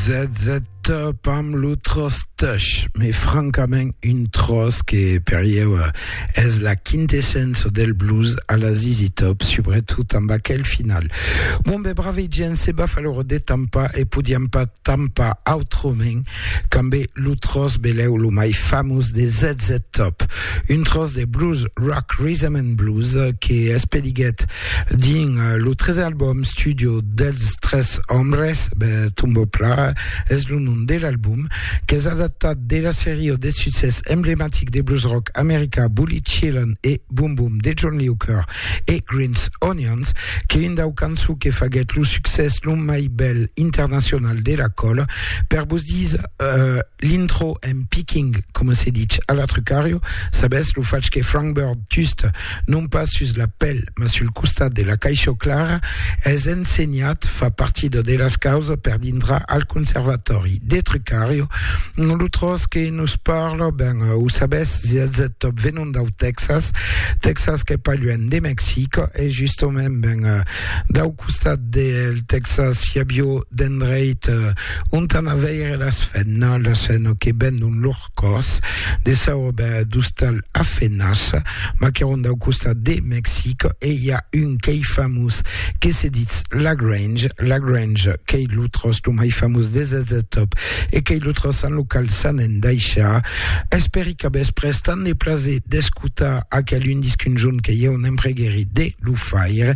Zètzèt pam lo tròç tèch, mai francament un tròç que per ieu es la quintessença del blues a la ZZ Top, subretot amb aquel final. Bon ben brave gent, se b'av a l'ora de tampar e podiam pas tampar autrament qu'amb lo tròç belèu lo mai famós de ZZ Top, un tròç de blues rock, rhythm and blues que espeliguèt Dins lo tresen album studio dels Tres Hombres, Tumbo Pla es lo nom de l'album, qu'es adaptat de la seria de succès emblematic de blues rock americà Bully Chillin e Boom Boom de John Lee Hooker e Green's Onions, qu'es un dau cançons que faguèt lo succès lo mai bèl internacional de la còla per vos dire L'intro en picking, coma se ditz a la Trucario, sabètz lo fach que Frank Bird just, non pas sus la pèl, mas sul costat de la caisho clara, es ensenhat, fa partida de las causas per dintrar al Conservatòri de Trucario, lo tròç que nos parla, ben, o sabètz, si ètz ethop venont dau Tèxas, Tèxas qu'es pas luènh de Mexic, e justament, ben, dau costat del Tèxas i avió d'endreit, ont an a veire las fennas, la sena que bendon lor còs de saurobèr d'ostal a fenas, maqueron dau costat de Mexic e i a un qu'ei famós que se ditz La Grange, La Grange qu'ei lo tròç lo mai famós de Zz-Top e qu'ei lo tròç en lo qual s'an endaishar. Espèri que vos pres tant de plaser d'escotar aquel un disc un jorn que ieu n'empreguèri de lo faire.